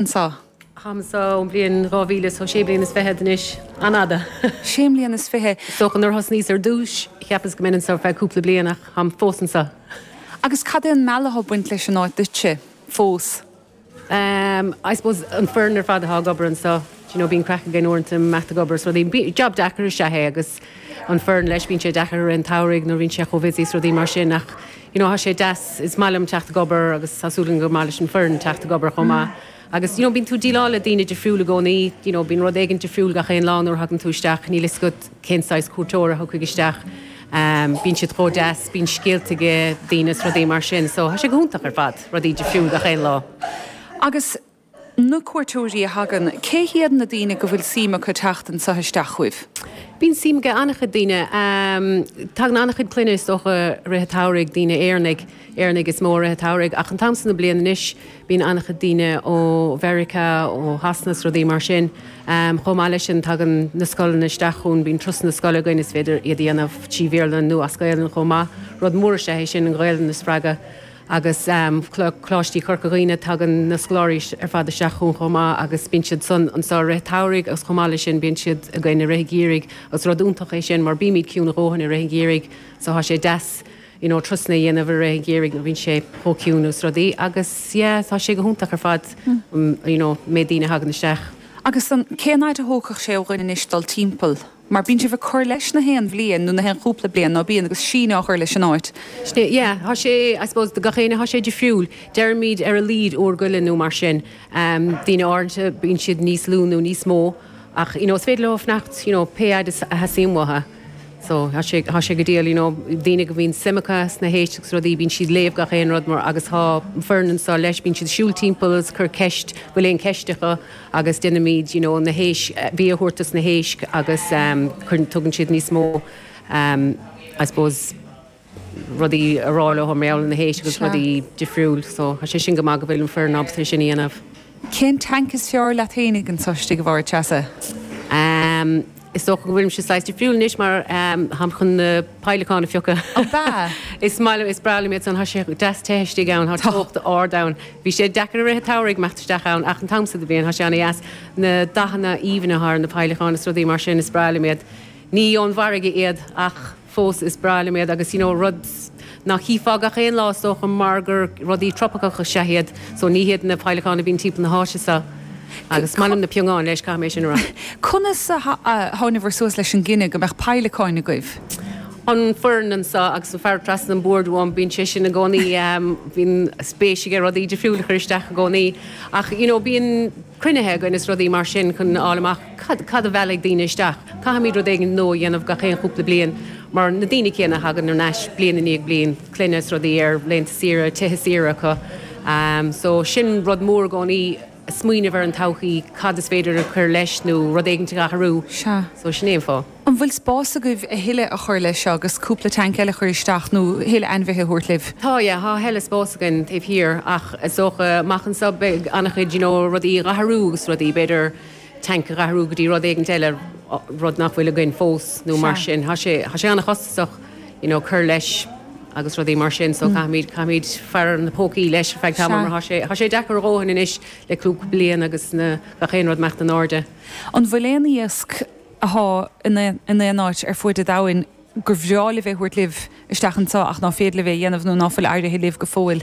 anseo. tháim anseo ón bhliain 2000 so sé bliana is fiche anois. An-fhada. sé mbliana is fiche. Is dócha nuair a thosnaíos ar dtúis, cheapas go mbeinn anseo ar feadh cúpla bliain ach táim fós anseo. Agus cad é an mealladh atá ag baint leis an áit duitse fós? Em, I suppose an foireann ar fad atá ag obair anseo, do you know, bíonn craic againn uaireanta, Matt ag obair is rudaí, bí, job deacair is ea é agus an foireann leis, bíonn sé deacair i rith an tsamhraidh nuair a bhíonn sé chomh busy is rudaí mar sin ach, you know tá sé deas, is maith liom teacht ag obair agus tá súil agam gur maith leis an foireann teacht ag obair chomh maith agus you know bíonn tú ag díleáil le daoine difriúil i gcónaí, you know bíonn rud éigint difriúil gach aon lá nuair a thagann tú isteach, níl 'fhios agat cén saghas cuairteoir a thiocfaidh isteach, bíonn siad chomh deas, bíonn scéalta ag daoine is rudaí mar sin so tá sé go hiontach ar fad, rudaí difriúil gach aon lá. Agus na cuairteoirí a thagann, cé hiad na daoine go bhfuil suim acu teacht anseo isteach chugaibh? Bíonn suim ag an-chuid daoine. Tagann an-chuid clainne is dócha i rith an tsamhraidh, daoine Éireannaigh, Éireannaigh is mó i rith an tsamhraidh ach an t-am seo na bliana anois bíonn an-chuid daoine ó Mheiriceá, ó Shasana is rudaí mar sin. Chomh maith leis sin tagann na scoileanna isteach chugainn, bíonn turasanna scoile againn is féidir iad a dhéanamh trí Bhéarla nó as Gaelainn chomh maith. Rud mór is ea é sin, an Ghaelainn a spreagadh. Agus Coláistí Chorca Dhuibhne, tagann na scoláirí ar fad isteach chugainn chomh maith agus bíonn siad san anseo i rith an tsamhraidh agus chomh maith leis sin bíonn siad againn i rith an gheimhridh agus rud iontach é sin mar bímid ciúin a dhóthain i rith an gheimhridh so thá sé deas you know turasanna a dhéanamh i rith an gheimhridh nuair a bhíonn sé chomh ciúin agus rudaí agus yeah thá sé go hiontach ar fad you know an méid daoine a thagann isteach. Agus an, cén fhaid a thógfadh sé ó dhuine anois dul timpeall? mar bíonn sibh ag cur leis gach aon bhliain nó gach aon chúpla bliain nó bíonn agus síneadh á chur leis an áit. Sea, yeah, tá sé, I suppose do gach éinne tá sé difriúil. Deirimid ar a laghad uair go leith nó mar sin. Daoine áirithe bíonn siad níos lú nó níos mó ach you know is féidir leo fanacht you know pé fhaid is a theastaíonn uathu. So tá sé, tá sé go diail you know daoine go bhíonn suim acu sna héisc agus rudaí bíonn siad ag léamh gach aon rud mar agus tá an foireann anseo leis bíonn siad ag siúl timpeall is ag cur ceist bhfuil aon ceist acu. agus déanaimid you know na héisc bia a thabhairt dos na héisc agus cuireann tugann siad níos mó I suppose rudaí a rá leo mar gheall ar na héisc agus Sure. rudaí difriúil so tá sé sin go maith go bhfuil an foireann ábalta é sin a dhéanamh. Cén tank is fearr leat féinig anso istigh a Mháire Treasa? Ahm. Is dócha go bhfuilimse saghas difriúil anois mar táim chun na peidhleacáin a phiocadh. Ab ea? Is maith liom, is breá liom iad san. Thá sé deas te istigh ann, thá teocht ard ann. Bhí sé deacair i rith an tsamhraidh imeacht isteach ann ach an t-am so de bhliain thá sé ana dheas. Na dathanna aoibhne atá ar na peidhleacáin is rudaí mar sin, is breá liom iad. Ní ón bhfarraige iad ach. fós is breá liom iad agus you know rud ná chífeá gach aon lá is dócha mar gur rudaí tropaiceacha is ea iad so ní hiad na peidhleacáin a bhíonn timpeall na háite seo agus is maith liom na piongáin leis caithfidh mé sin a rá. Conas a thánabhair suas leis an gcinneadh go mbeadh peidhleacáin agaibh? An foireann anseo agus an fear trasna an bhoird uaim bíonn sé sin i gcónaí bíonn spéis aige rudaí difriúil a chur isteach i gcónaí ach you know bíonn cruinnithe againn is rudaí mar sin chun a fháil amach Cad, cad a mheallfaidh daoine isteach? Caithfimid rud éigin nua a dhéanamh gach aon chúpla bliain mar na daoine céanna a thagann ar ais bliain i ndiaidh bliain, clainne is rudaí ar laethanta saoire, tithe saoire acu. So sin rud mór i gcónaí, smaoineamh ar an todhchaí, cad is féidir a chur leis nó rud éigint a athrú. So sin é an fáth. An bhfuil spás agaibh a thuilleadh a chur leis seo agus cúpla tank eile a chur isteach nó a thuilleadh ainmhithe a thabhairt libh? Tá, yeah, tá a thuilleadh spás againn taobh thiar ach is dócha amach anso beidh an-chuid you know rudaí a athrú agus rudaí b'fhéidir, tank a dh'athrú go dtí rud éigint eile, rud nach bhfuil againn fós nó mar sin. Tá sé, tá sé an-chostasach you know cur leis agus rudaí mar sin so caithfimid, caithfimid faire ar na pócaí leis ar feadh tamaill mar tá sé, tá sé deacair a dhóthain anois le cúpla bliain agus na, gach aon rud ag imeacht in airde. An bhfuil aon iasc athá in aon, in aon áit ar fuaid a' domhain gur bhreá libh é thabhairt libh isteach anseo ach ná féidir libh é a dhéanamh nó ná fuil éirithe libh go fóill?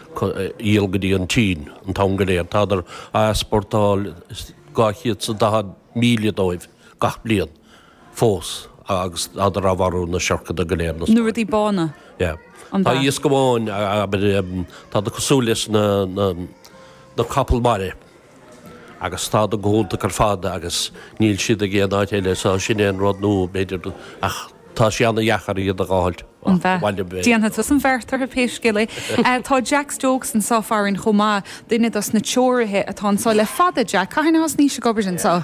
dhíol go dtí an tSín an t-am go léir. Tádar á easportáil is dhá chéad is daichead míle dóibh gach bliain fós agus tádar á mharú, na siorcanna go léir, na rudaí bána, an bheach. Tá iasc amháin, abair, tádar cosúil leis na capaill mara. agus tádar go hiontach ar fad agus níl siad ag aon áit eile so sin é an rud nó b'fhéidir ach tá sé ana-dheacair iad a dh'fháilt An bhfeadh. abhaile b'fhéidir. Déanfaidh tusa an bheart orthu pé scéal é. Tá Jack Stokes anseo farainn chomh maith, duine dos na treoraithe atá anseo le fada. Jack, cathain a thosnaís ag obair anseo?